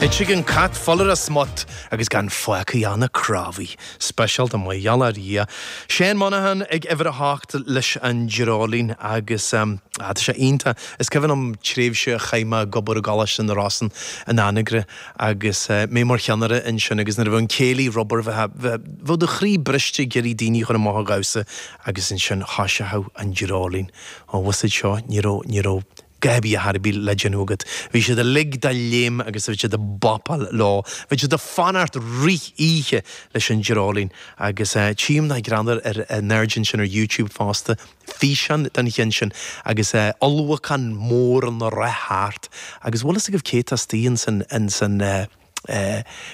Ite ag an gcat, fuil ar a smut agus gan fágtha ach na cnámhaí. Speisialta mar gheall ar Dhia. Seán Monaghan ag uimhir a hocht leis an dreoilín agus tá sé iontach. Is cuimhin liom tréimhse a chaith mé ag obair i gColáiste na Rosann in Anagaire agus mé mar cheannaire ansin agus nuair a bheadh an céilí ar obair bheadh do chroí briste ag iarraidh daoine a chur amach a dhamhsa agus ansin thoiseochadh an dreoilín. Ó, bhfuil a fhios agat seo, ní raibh, ní raibh. dhath ar bith, a dhath ar bith le déanamh agat, bhí siad uilig de léim agus bhí siad ag bopáil leo. Bhí siad ag fanacht rith oíche leis an dreoilín. Agus tchím nach greannmhar, in airde ansin ar YouTube fosta, físeán den cheann sin agus ulchabhán mór ag rith thart. Agus bhfuil fhios agaibh cé atá astoigh ins an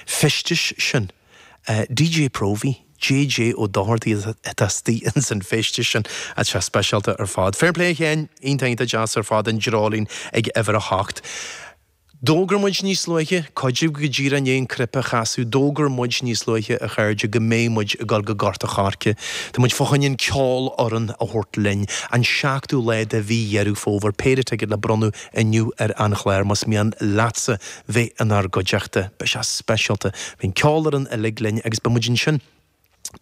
feisteas sin? D.J. Próvaí, J.J. Ó Dochartaigh atá istigh ins an feisteas sin. Tá sé speisialta ar fad. Fair play, a Sheáin. Iontach, iontach deas ar fad an dreoilín ag uimhir a hocht. D'fhógair muid níos luaithe, coidil go díreach i ndiaidh an cnaipe a chasadh, d'fhógair muid níos luaithe, a chairde, go mbeidh muid ag dul go Gort a' Choirce. Tá muid fá choinne an cheolfhoireann a thabhairt linn. An seachtú lá de mhí Dheireadh Fómhair. Péire ticéad le bronnadh inniu ar an chlár, más mian leatsa bheith inár gcuideachta. Beidh sé speisialta. Beidh an cheolfhoireann uilig linn agus beidh muid ansin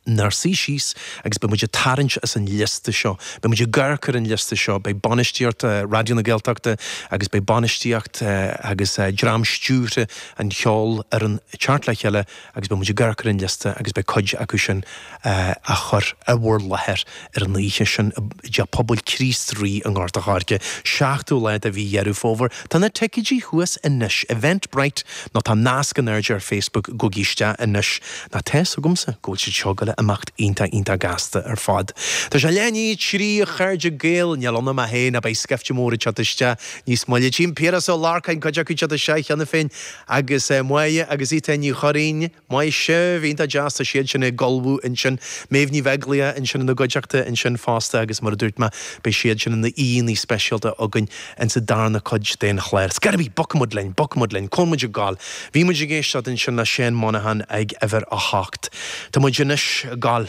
inár suí síos agus beidh muid ag tarraingt as an liosta seo. Beidh muid ag amharc ar an liosta seo. Beidh bainistíocht Raidió na Gaeltachta agus beidh bainistíocht agus dream stiúrtha an cheolfhoireann ag teacht le chéile agus beidh muid ag amharc ar an liosta agus beidh cuid acu sin á chur i bhur láthair ar an oíche sin i dTeach Pobail Chríost Rí i nGort an Choirce, 7ú lá de mhí Dheireadh Fómhair. Tá na ticéidí thuas anois, Eventbrite nó tá nasc in airde ar Facebook, gabhaigí isteach anois! Nó tá a fhios agamsa go bhfuil siad seo ag goil a imeacht iontach iontach gasta ar fad. Tá sé leath i ndiaidh a 3, a chairde Gael, níl ionam ach é ná beidh scaifte mór ag teacht isteach níos moille. Chím Piaras Ó Lorcáin cuid acu siúd isteach cheana féin agus Máire agus Étáin Ní Churraoin, maise, bhí iontach deas, tá siad sin ag ullmhú ansin, Méabh Ní Bheaglaoich ansin ina gcuideachta ansin fosta agus mar a dúirt mé, beidh siad sin ina aíonna speisialta againn in sa darna cuid den chlár. Ar scor ar bith, bogfaidh muid linn, bogfaidh muid linn, cá bhfuil muid ag goil, bhí muid ag éisteacht ansin le Seán Monaghan ag uimhir a hocht, tá muid anois ag goil.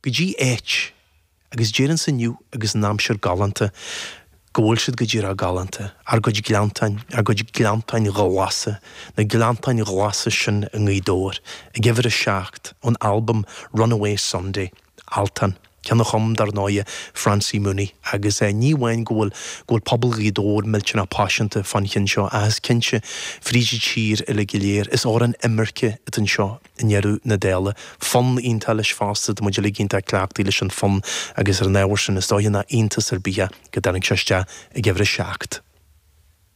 go dtí áit, agus déarfainnse inniu agus an aimsir galánta, go bhfuil siad go díreach galánta, ár gcuid gleanntáin, ár gcuid gleanntáin ghlasa, na gleanntáin ghlasa sin i nGaoth Dobhair, ag uimhir a seacht, ón albam Runaway Sunday, Altan, ceann a chum, dar ndóighe, Francie Mooney, agus ní amháin go bhfuil, go bhfuil pobal Ghaoth Dobhair millteanach paiseanta fán chinn seo, ach is cinnte, fríd an tír uilig go léir, is amhrán imirce atá anseo, i ndeireadh na dála, fonn iontach leis fosta, tá muid uilig iontach cleachtaithe leis an bhfonn agus ar an ábhar sin, is dóiche nach iontas ar bith é go dtáinig sé isteach ag uimhir a seacht.